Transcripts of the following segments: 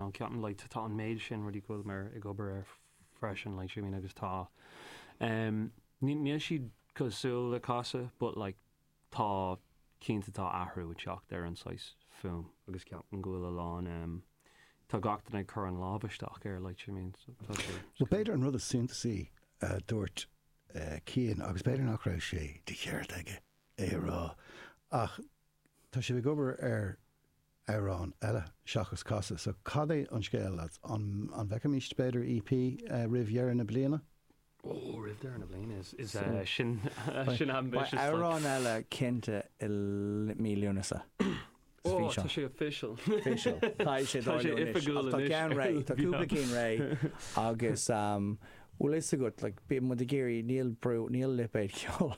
A cheapann like tá an méid sin rudaí go bhfuil muid ag obair air freisin like see what I mean agus tá em ní níl siad cosúil le Casadh but like tá cinnte tá athrú ag teacht ar an saghas fuaim agus ceapaim go bhfuil a lán em tá gach duine ag cur a lámh isteach air like see what I mean so tá sé Bhuel b'fhéidir an rud is suntasaí a dúirt eh Cian agus b'fhéidir nach raibh sé de cheart aige é a rá ach tá sibh ag obair ar amhrán eile seachas Casadh. So cad é an scéal lads? An an bhfeicfimíst b'fhéidir EP roimh dheireadh na bliana? Ó roimh deireadh na bliana is is eh sin sin ambitious like. Beidh amhrán eile cinnte i mí Lúnasa. Ó tá sé official. Official. Tá sé tá sé oifigiúil anois. Tá ceann réidh, tá cúpla ceann réidh agus bhfuil a fhios agat like bíonn muid ag iarraidh níl brú níl lipéad ceoil.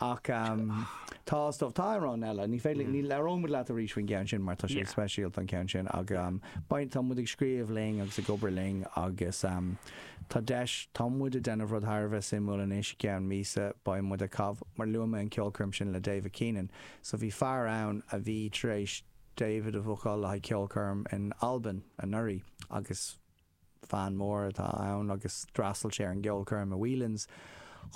Ach tá, is dóigh, tá amhráin eile, ní féidir, ní, labhróimid leat arís faoin gceann sin mar tá sé speisialta an ceann sin ach beidh, tá muid ag scríobh linn agus ag obair linn agus tá deis, tá muid ag déanamh rud thar a bheith suimiúil anois, i gceann míosa beidh muid ag caitheamh, mar luaigh mé an cheolchoirm sin le David Keenan, so bhí fear ann a bhí tar éis David a bhookáil le haghaidh ceolchoirm in Albain anuraidh agus. Fan mór atá ann agus d'fhreastail sé ar an gceolchoirm i Whelan's.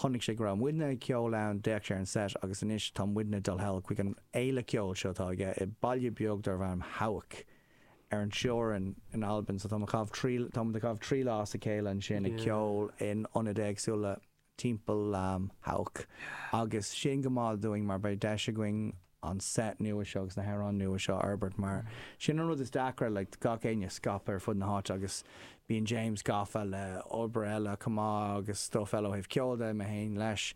Chonaic sé go raibh muidne ag ceol ann, d'fhéach sé ar an seit agus anois tá muidne dul thall chuig an fhéile ceoil seo atá aige i mbaile beag darb ainm Hawick ar an teorainn in Albain. So táimid ag caitheamh trí lá as a chéile ansin ag ceol in ionaid éagsúla. timpeall Hawick agus sin go maith dúinn mar beidh deis againn an set nua seo agus na hamhráin nua seo a fhorbairt mar sin an rud is deacra le gach éinne scaipthe ar fud na háite agus bíonn James gafa le obair eile chomh maith agus stuff eile ó thaobh ceoil de, mé féin leis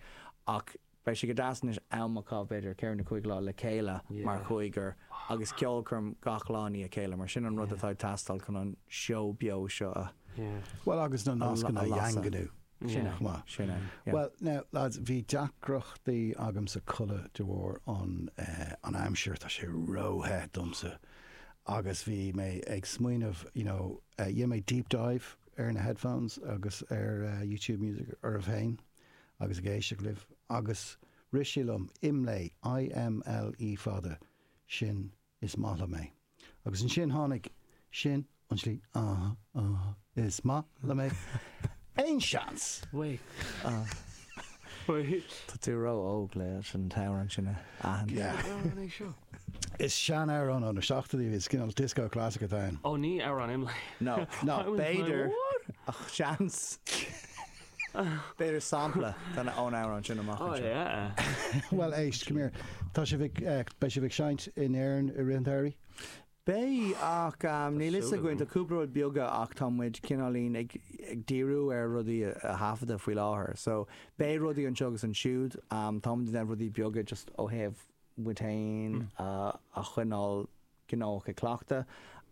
ach beidh sé go deas anois am a chaitheamh b'fhéidir ceithre nó cúig lá le chéile mar chúigear agus ceolchoirm gach lá i ndiaidh a chéile mar sin an rud atá ag teastáil chun an seó beo seo a bhuel agus na nascanna a dhaingniú. Sin é. Maith. Sin é. Yeah. Well, now, lads, bhí deacrachtaí agamsa codladh de bharr an, eh, an aimsir, tá sé róthe domsa. Agus bhí mé ag smaoineamh, you know, eh, dhéan mé deep dive ar na headphones agus ar eh, YouTube Music oraibh féin agus ag éisteach libh. Agus rith sé liom, IMLÉ, I-M-L-E E fada, sin is maith liom é. Agus ansin tháinig, sin an tslí, ah, ah, is maith liom é. Aon seans? Wait. Wait. Tá tú ró óg leis an amhrán sin a aithint. Amhrán é seo? Is seanamhrán ó na seachtóidí cinál disco classic atá ann. Ó ní amhrán IMLÉ. No, no, b'fhéidir ach seans. B'fhéidir sampla de na hamhráin sin amach anseo. Bhuel éist, come here, tá sibh ag, beidh sibh ag seinnt in Éirinn i rith an tsamhraidh? Beidh ach níl 'fhios againn, tá cúpla rud beaga ach tá muid cineáilín ag díriú ar rudaí a thaifeadadh faoi láthair. So beidh rudaí anseo agus ansiúd, tá muid ag déanamh rudaí beaga just ó thaobh muid féin a choinneáil gnóthach ag cleachtadh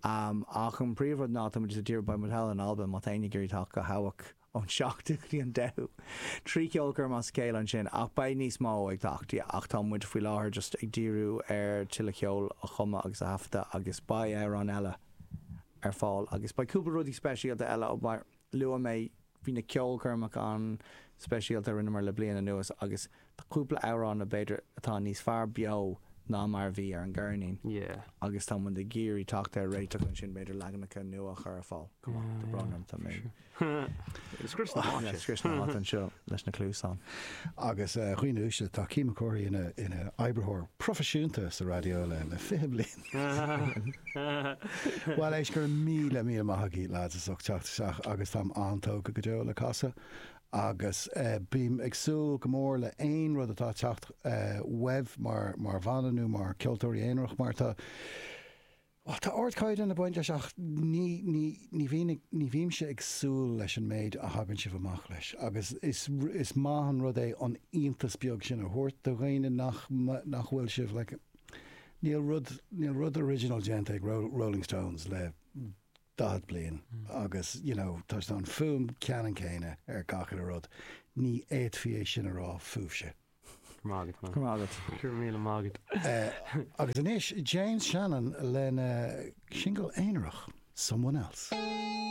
ach an príomhrud ná tá muid just ag díriú, beidh muid thall in Albain, má tá éinne ag iarraidh teacht go hAwak. ón 7ú go dtí an 10ú. Trí cheolchoirm as a chéile ansin, ach beidh níos mó ag teacht, yeah, ach tá muid faoi láthair just ag díriú ar tuilleadh ceol a chumadh agus a thaifeadadh agus beidh amhráin eile ar fáil agus beidh cúpla rudaí speisialta eile mar luaigh mé bhí na ceolchoirmeacha an-speisialta a rinneamar le bliain anuas agus Tá cúpla amhrán a b'fhéidir atá níos fearr beo ná mar a bhí ar an gceirnín agus tá muid ag iarraidh teacht ar réiteach ansin, b'fhéidir leaganacha nua a chur ar fáil. Go maith, tá brón orm, tá mé ag scrios na háite. Ag scrios na háite anseo leis na cluasáin. Agus a dhaoine uaisle, tá Cian Mac Cárthaigh ina oibritheoir proifisiúnta sa raidió le 20 bliain. Bhuel, éist, go raibh míle míle maith agaibh, lads, as ucht teacht isteach agus táim an-tógtha go deo le Casadh agus bím ag súil go mór le haon rud atá ag teacht uaibh mar bhanna nó mar cheoltóirí aonarach mar tá bhuel tá ardchaighdeán ag baint leis ach ní ní ní bhíonn ag ní bhímse ag súil leis an méid a thagann sibh amach leis agus is is maith an rud é an iontas beag sin a thabhairt do dhaoine nach nach bhfuil sibh like níl rud níl rud original déanta ag Rolling Stones le 40 bliain agus, you know, tá sé an fuaim ceannann céanna ar gach aon rud, ní fhéadfaí é sin a rá fúibhse. Go raibh maith agat, man. Go raibh maith agat. Go raibh míle maith agat. Agus anois James Shannon lena singil aonarach, Someone Else.